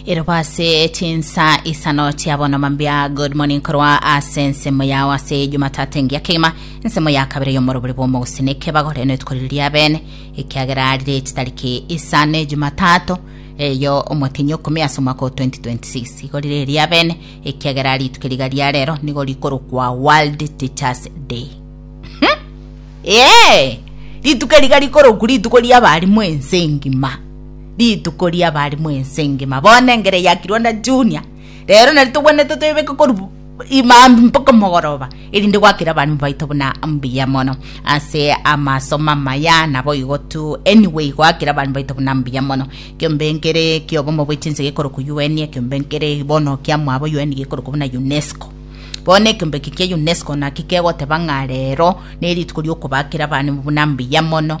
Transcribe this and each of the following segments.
erobo ase chinsa isano chia bono mambia good morning korwa ase ensemo yao ase jumatatu engiya kegima ensemo ya kabere yomorobori bwomogusini kebagore netuko riria bene ekiagera rire chitariki isano ejumatatu eyo omotenyi okumi ase omwaka o 2026 igo rire eria bene ekiagera rituko riga ria rero nigo rikorokwa world teachers day ee rituko riga rikoroku rituko riabarimu ense engima Rituko ri'abarimu ense engima, bono engere eyakirwe na Junia, rero nari togwenerete toyebeke korwa imambia mpaka mogoroba, erinde gwakere abarimu baito buna mbuya mono ase amasomo amaya. Naboigo tu, anyway, goakera abarimu baito buna mbuya mono. Ekeombe nkere ki'obomo bwe chinse gekorokwa UN, ekeombe nkere bono kiamwabo UN gekorokwa buna UNESCO. Bono ekeombe eke kia UNESCO naki kegoteba ng'a rero nerituko ri'okobakera abarimu buna mbuya mono,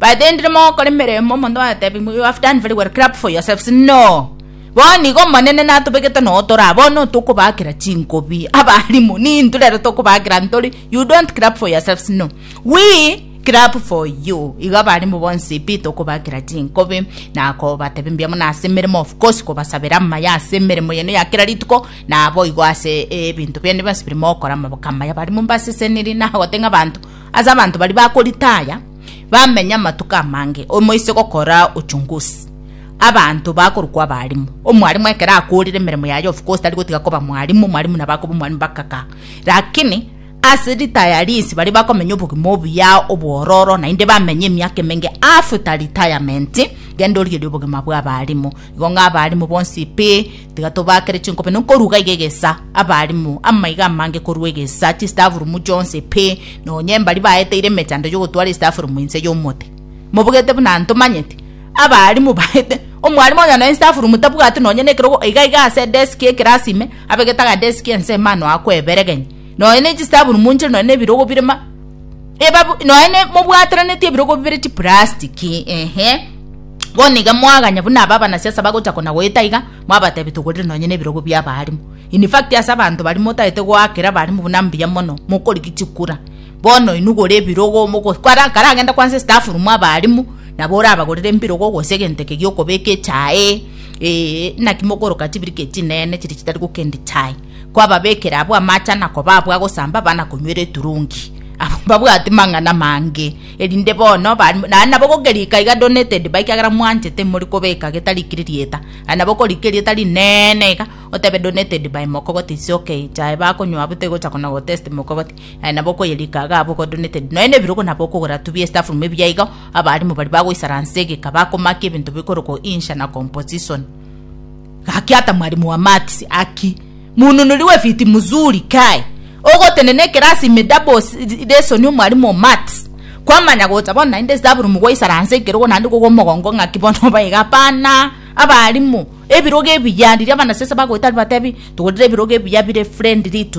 But then ndire mogokora emeremo omonto agatebia ng'a you have done very well clap for yourselves no bono igo omonene natobegete noo toraa bono tokobaakera chinkobi abalimu ninto rero tokobaakera ntori you don't clap for yourselves no we clap for you igo abalimu bonsi pi tokobaakera chinkobi na kobatebia mbuya mono ase emeremo of course kobasabera amaya ase emeremo yane ya kera rituko nabo igo ase ebinto biane bionsi biri mogokora amaboko amaya abalimu mbaseseniri na gotenga abanto ase abanto baria bakoritaya bamenye amatuko amange omoise gokora ochungusi abanto bakorokwa abarimu omwarimu ekero akorire emeremo yaye of course tari gotiga koba mwarimu omwarimu nabo akoba omwarimu bakaka lakini ase ritayaris baria bakomenya obogima obuya obwororo naende bamenye emiaka emenge after retirement genda origerie obogima bwa abarimu Igo ng'a abaalimu bonsi pi, tiga tobakere chinkobe nokoruga iga egesa, abaalimu, amaiga amange korwa egesa, chistafurumu chionsi pi, nonya embari baeteire emechando y'ogotwara istafurumu inse y'omote. Mobogete buna ntomanyete? Abaalimu baete, omwalimu onye nonya istafurumu tabwati nonya nekerogo, iga iga ase deski y'ekerasi ime, abegete agadeski ense ime anoa kweberegenya, nonya nechistafurumu nchire nonya nebirogo bire ma, ebabu- noe ne- mobwataraneti ebirogo bibere chiplastiki ehe bono iga mwaganya buna aba abanasiasa bagocha kona goeta iga mwabatebi togorire nonye na ebirogo bia abaalimu in fact ase abanto baria motaete goakera abaalimu buna mbuya mono mokorigia chikura bono inwe gora ebirogo mogo kwara karagende kwansa estaff room abaalimu nabo orabagorere mbirogo gose egento eke giokobeka echae eeh naki mokoroka chibirika echi chinene chiria chitari gokendia chai. kwababekera abwo amaache na kobaabwo agosamba abana konywera eturungi. Abwo mbabwate mang'ana mange, erinde bono naende nabo gokerika iga donated by kiagera mwanchete mori kobeka getarikiri rieta naende nabo korika erieta rinene iga otebe donated by mokogoti is ok chae bakonywa abwo tegocha kona go test mokogoti naende nabo okoyerika iga abwo ko donated nonya na ebirogo nabo okogora tu bia staff room ebiya iga abalimu baria bagoisaransa egeka bakomaki ebinto bikorokwo insha na composition. Gaki ata mwalimu wa maths aki mununuri we fiti muzuri kae ogotenena ekerasi ime double lesson omwalimu o maths kwamanya gocha bono naende staffroom gwaisara nse ekerogo naende kogwa omogongo ng'aki bono obae iga hapana abalimu ebirogo ebiya riria abanasese bagoeta batebi togorire ebirogo ebiya bire friendly to